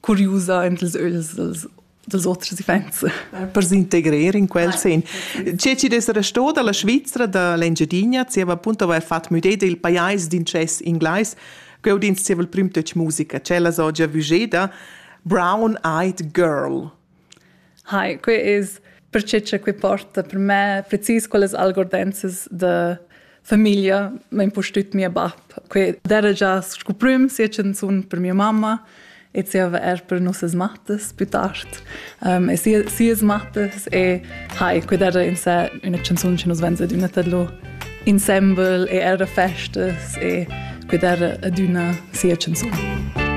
curiusa en ils ögls dels, dels oters iffaints. Per s'integrar in quel sen. Tge ci dess restò dalla Svizzera da l'Engiadina, zieva appunto avair fatto müdé del pajais d'incess inglais, ch'eu dins zieva il prim töch musica, cella so già vugeda, Brown-Eyed Girl. Hi, quei es perche cha quei porta per me precis quellas algordenzas da famiglia, ma impustüt mia bap. Quei d'eira già scu prüm sia chanzun per mia mamma e zieva eir per nossas mattas plü tard. e sia sias mattas e hi, quei d'eira in sè üna chanzun chi nus vain adüna tadlù insembel e eir a festas e quei d'eira adüna sia chanzun.